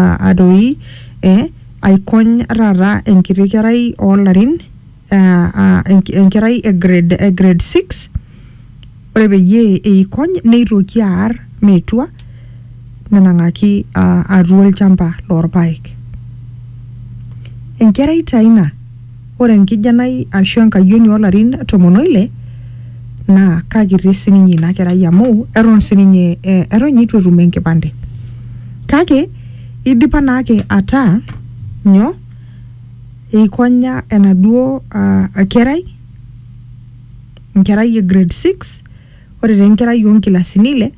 ah, adoi eh, aikony taata enkiti kerai oolarin ah, ah, enk- enkerai e grade, e grade 6 ore peyie eikony neitoki aar metua nenang'aki ah, atua olchamba loorpaek enkerai taa ina Ore enkijanai ashu enkayioni oo larin tomon o ile naa kakiti sii ninye ina kerai amu eton sii ninye eton ninye eitu etum enkipande. Kake eidipa naake ataa nyoo, eikonya enaduo kerai, enkerai e grade six, ore taa enkerai oo nkilasini ile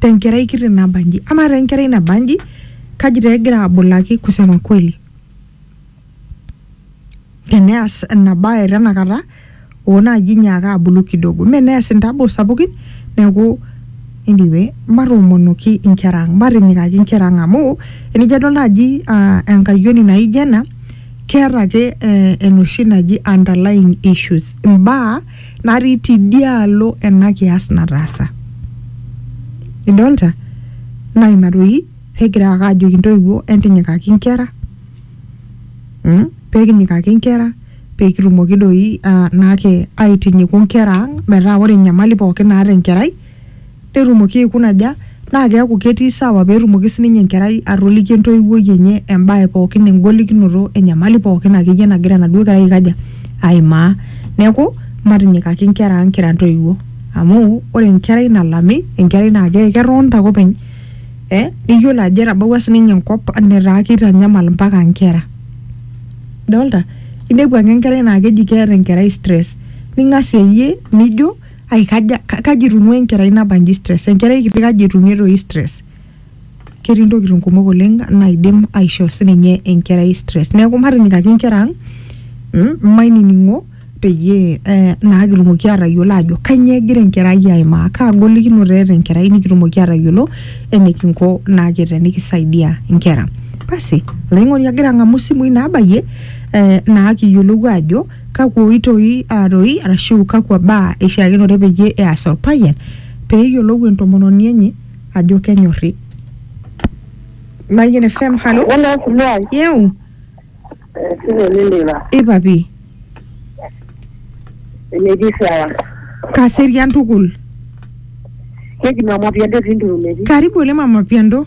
te nkerai kiti nabanji ama taa enkerai nabanji kaji taa egira abulaki kusema kweli teneas ina bae tenakata oo naaji inyaaka abulu kidogo mee neas intaboo sapukin neeku anyway matoomonoki inkera ang matinyikaki inkera ang amu enijo adol naaji ah, enkayioni naijo ena keeta ake eh, enoshi naji underlying issues imbaa natii tidialo ena kias nataasa idolta naa ina doi pegira ake ajoki intoiwuo entinyikaki inkera mm, pekinyikaki inkera pekitumoki doi uh, naake aitinyiku inkera ang metaa ore enyamali pookin naata enkerai netumoki aikuna aja naa keaku ketii sawa petumoki sininye enkerai atoliki entoiwuoi enye embae pookin engolikinoto enyamali pookin akeyie nagira enaduo kerai aikaja aimaa neku matinyikaki inkera ang kira intoiwuo amu ore enkerai nalami enkerai naa ke ketonta ake openy eh neyiolo ajo etabawua sininye enkop netaa kitanyamal impaka inkera idolta inepu ake enkerai naa keji keeta enkerai stress ning'asia iyie nijo. ai kaja ka- kaji itung'ua enkerai nabanji stress enkerai kiti kaji etumie toi stress ketii intokitin kumok oleng naidim aishoo sininye enkerai stress neeku matinyikaki inkera ang mm, mainining'o peyie eh, naa kitumoki atayiolo ajo kanyoo egira enkerai aimaa kaa golikinoto eeta enkerai nikitumoki atayiolo enikinko naake tenikisaidia inkera basi olainining'oni agira ang'amu isimui nabayie eh, naa kiyiolou ajo Kakwa oitoi aaroi arashu kakwa baa eishaakinore peyie eas olpayian pee eyiolou entomononi enye ajo kenyorri? Mayian FM, halo. Wala siluai. Yeu. Sile liliva. Ipapi. Eneji sawa. Kaserian tukul. Keji mama piando tindu meji. Karibu ole mama piando.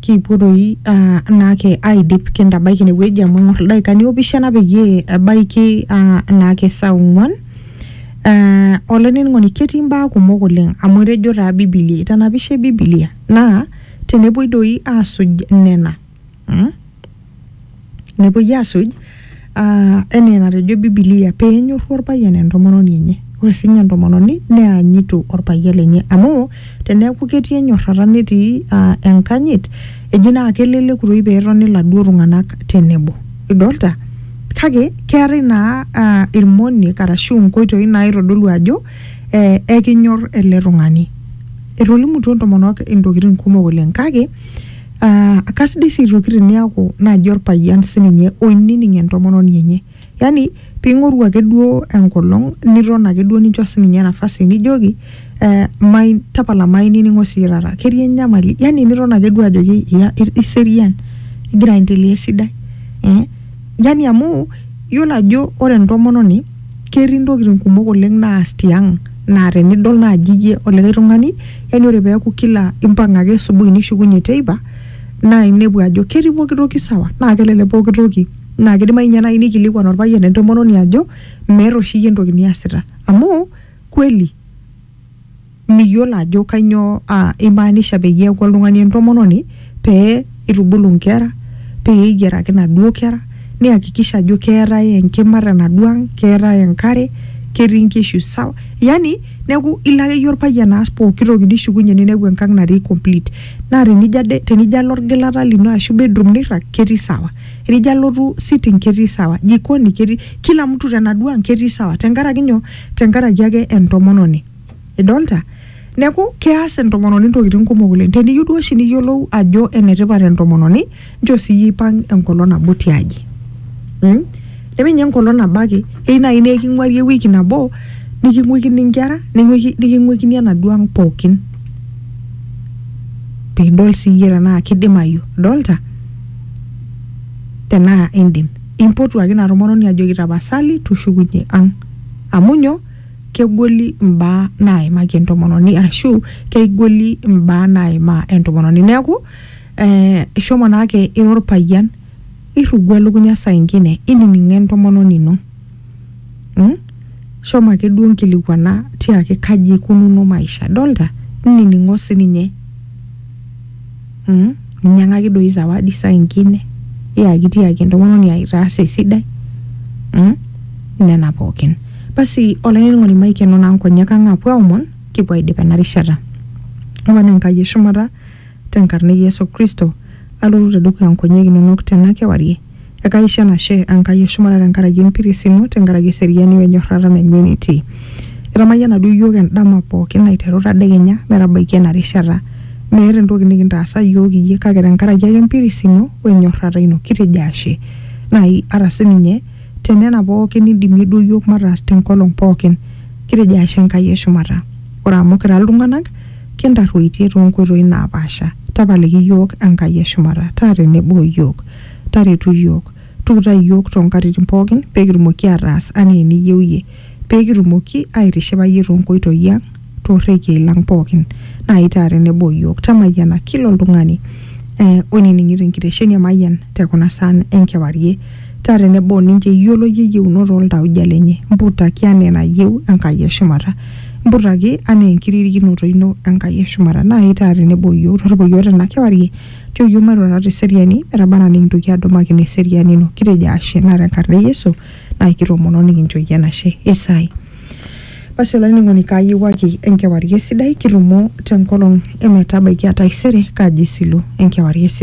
kipuo doi ah, naake aidip kintabaiki inewueji amu eng'or ildaikani opishana peyie ebaiki ah, naake saa ong'uan Ah, olainining'oni ketii imbaa kumok oleng amu etejo taa bibilia itanapishe bibilia naa tenepuoi doi asuj nena mm? nepuoi asuj uh, enaa enatejo bibilia peenyorru orpayian entomononi enye ore sinye entomononi neanyitu orpayian lenye amu teneeku ketii enyorrata netii uh, enkanyit eji naa keleleku toi peetoni iladuo tung'anak tenebo idolta kake keetae naa uh, irmoniek arashu inkoitoi naitodolu ajo eh, ekinyorr ele tung'ani etolimutuo intomonok intokitin kumok oleng kake Ah, kasidai sii aitoki teniaku naaji orpayian sininye oinining entomononi enye yani ping'oru ake duo enkolong niton ake duo nincho sininye nafasi nijoki eh, mai, tapala mainining'o siyie taata ketii enyamali yani niton ake duo ajoki ira iserian igira aendelea esidai eh, yani amu yiolo ajo ore entomononi ketii ntokitin kumok oleng naas tiang naa tenidol naaji iyie olikae tung'ani yani ore peeku kila impang ake asubuhi nishukunyie teipa naa inepu ajo ketii pokitoki sawa naa kelelek pokitoki naa kidimai inye naaji nikilikuan orpayian entomononi ajo meeta oshi iyie entoki niasita amu kweli. miyiolo ajo kainyoo aa imaanisha peyie eeku oltung'ani entomononi pee itubulu inkera pee eyiaraki inaduo kera niyakikisha ajo keetae enkima tenaduo ang keetae enkare ketii inkishu sawa yani neeku ilo akeyie orpayian aas pokitoki nishukunyie ninepu enkang natii complete naa tenijo ade tenijo alo orgilata lino ashu bedroom nirrag ketii sawa enijo alotu sitting ketii sawa jikoni ketii kila mtu tenaduo ang ketii sawa tenkaraki nyoo. tenkaraki ake entomononi idolta neeku keas entomononi ntokitin kumok oleng teniyieu duo oshi niyiolou ajo enetipat entomononi nchoo siyie ipang enkolong nabo tiaji mm? nemenye enkolong nabo ake ei naaji naa eking'uari ewiki nabo niking'uikini inkera ning'uiki- niking'uikini enaduo ang pookin piidol siiyie tenaa kidimayu idolta tenaa indim Impotuaki ina tomononi ajoki tapasali tushukunye ang. Amu nyoo? Kegoli imbaa naaimaki entomononi arashu keigoli imbaa naimaa entomononi. Neaku eh ishomo naake ira orpayian irrugo elukunya saa ingine inining'o entomononi ino. mm? shomo ake duo nkilikuana tiaki kaji ikununo maisha dolta nining'o sininye mm? ninyiang'aki doi zawadi saa ingine iyaki tiaki entomononi ai itaasa esidai mm? nena pookin basi olainining'oni maikeno naa nkonyek ang apuo aomon kipuo aidip ena rishata omon enkai eshumata tenkarna e yesu kristo alotu tedukuya nkonyek inonok tena kewarie Ekaisho enashe Enkai e shumata tenkaraki empiris ino, tenkaraki eseriani o enyorrata nainyua enitii. Itamayiana duo iyiook endama pooki aiteru tadekenya metabaiki ena rishata. Meeta entoki nikintaasa iyiook iyie kake tenkaraki ake empiris ino o enyorrata ino. Kitejo ashe. Nai ata sininye te nena pooki nindimie duo iyiook mataas tenkolong pooki. Kitejo ashe Enkai e shumata. Ore amu kira iltung'ana, kintarruoitie too nkoitoi naapaasha. Tapaliki iyiook Enkai e shumata. Taa tenebo o iyiook. Taretu iyiook. Tuutai iyiook too nkatitin pooki pee kitumoki aataas anaa eniyieu iyie, pee kitumoki aaitishipa iyie too nkoitoi ang, too rrekiei lang pooki. Naa itaa tenebo o iyiook. Tamayiana kila oltung'ani oinining'ito enkitesheni e Mayian te kuna saan e nkewarie. Taa tenebo o ninche iyiolo iyie iyieunot oo ltauja lenye. Mputaki anaa enayieu Enkai e shumata. Mputaki anaa enkiririkinoto ino Enkai e shumata. Naaji taata tenebo o iyiook torripo iyiook tena kewarie. Nchoo iyiook mairurata te seriani metaba anaa nikintoki aadumakino eseriani ino. Kitejo ashe naa te nkarna e Yesu naa kitoomono nikincho iyie enashe. Isae. Basi olainining'oni kaayiewuaki enkewarie sidai kitumo te nkolong e metabaiki aa taisere kaji isilu enkewarie sidai.